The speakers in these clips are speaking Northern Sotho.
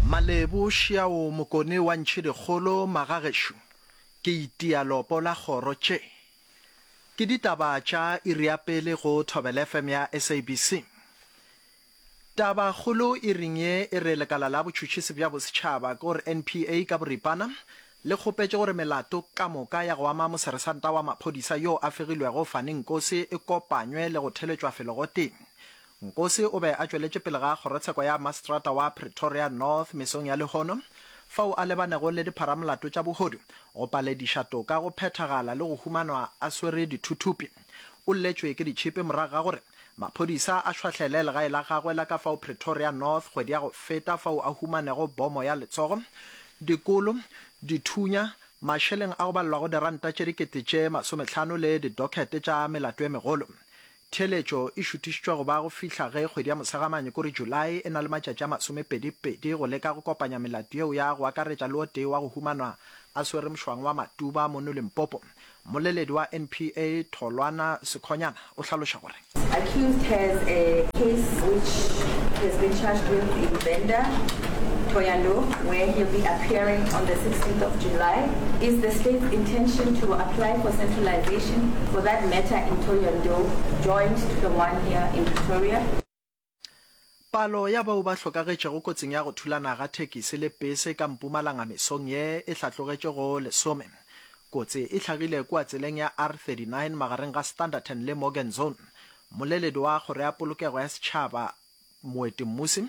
Malebo šiao mokone wa ntšhedikgolo magagešo ke itia lopo la kgoro tše ke ditaba tša iri ya pele go thobelfm ya SABC taba kgolo iring ye e re lekala la botšhutšhisi bja bosetšhaba ke gore NPA ka boripana le kgopetše gore melato ka moka ya go ama moseresanta wa maphodisa yo a fegilwego Fani Nkosi e kopanywe le go theletšwa felo gotee Nkosi o be a tšweletše pele ga kgorotsheko ya maseterata wa Pretoria North mesong ya lehono, fao a lebanego le dipharamolato tša bohodu, go palediša toka go phethagala le go humanwa a swere dithuthupi. O lletšwe ke ditšhipi morago ga gore maphodisa a šwahlele legae la gagwe la ka fao Pretoria North kgwedi ya go feta fao a humanego bomo ya letsogo, dikolo, dithunya, mašeleng a go balelwa go diranta tše dikete tše masometlhano le didokhete tša melato e megolo. Theeletšo e šuthišitšwa go ba go fihla ge kgwedi ya Mosegamane, ko re Julae, e na le matšatši a masomepedi-pedi go leka go kopanya melato yeo ya go akaretša le o tee wa go humanwa a swere mošwang wa Matuba mono Limpopo. Mmoleledi wa NPA, Tholwana Sekhonyana, o hlaloša gore. Accused has a case which he has been charged with in Venda, Thohoyandou, where he'll be appearing on the 16th of July. Is the state's intention to apply for centralisation? Foundation, for that matter in Thohoyandou, joined to the one here in Pretoria. Palo ya bao ba hlokagetšego kotsing ya go thulana ga thekisi le pese ka Mpumalanga mesong ye e hlatlogetše go lesome. Kotsi e hlagile kua tseleng ya R39 magareng ga Standerton le Morgan Zone. Mmoleledi wa Kgoro ya Polokego ya Setšhaba Moetemmusi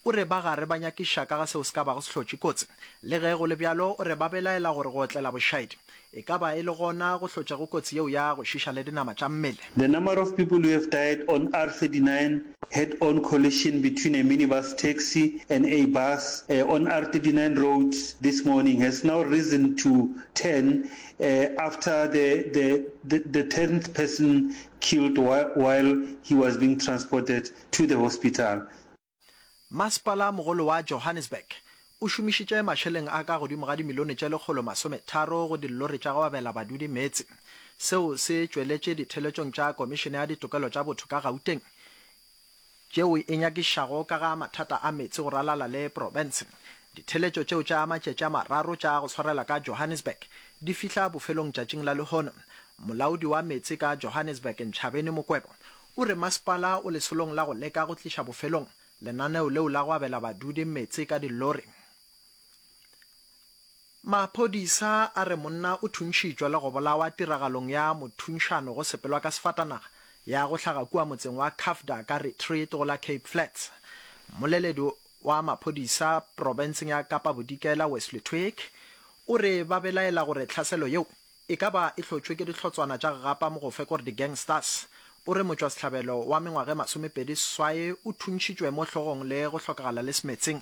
o re ba gare ba nyakiša ka ga seo se ka bago se hlotše kotsi. Le ge go le bjalo, o re ba belaela gore go otlela bošaedi e ka ba e le gona go hlotšago kotsi yeo ya go šiša le dinama tša mmele. The number of people who have died on R39, head-on collision between a minibus taxi and a bus on R39 road this morning has now risen to ten after the the the the tenth person killed while he was being transported to the hospital. Masepala mogolo wa Johannesburg o šomišitše mašeleng a ka godimo ga dimilione tše lekgolo masome tharo go dillori tša go abela badudi meetse. Seo se tšweletše ditheeletšong tša Komišene ya Ditokelo tša Botho ka Gauteng tšeo e nyakišago ka ga mathata a meetse go ralala le profense. Ditheletšo tšeo tša matšatši a mararo tša go swarela ka Johannesburg di fihla bofelong tšatšing la lehono. Molaodi wa meetse ka Johannesburg Nchabeni Mokwebo o re masepala o lesolong la go leka go tliša bofelong lenaneo leo la go abela badudi meetse ka dilori. Maphodisa a re monna o thuntšhitšwe le go bolawa tiragalong ya mothunšano go sepelwa ka sefatanaga ya go hlaga kua motseng wa Kafda ka Retreat go la Cape Flats. Mmoleledi wa maphodisa profenseng ya Kapa Bodikela Wesley Twigg o re ba belaela gore tlhaselo yeo e ka ba e hlotšwe ke dihlotswana tša gapa mogofe gore di-gangsters. O re motšwasehlabelo wa mengwaga e masomepedi seswae o thuntšhitšwe mo hlogong le go hlokagala le semetseng.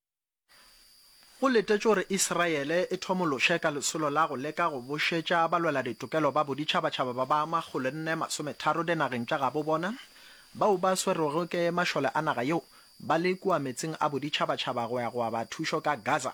Go letetšwe gore Israele e thomološe ka lesolo la go leka go bušetša balweladitokelo ba boditšhabatšhaba ba ba makgolo nne masometharo dinageng tša gabo bona bao ba swerwego ke mašole a naga yeo ba le kua meetseng a boditšhabatšhaba go ya go aba thušo ka Gaza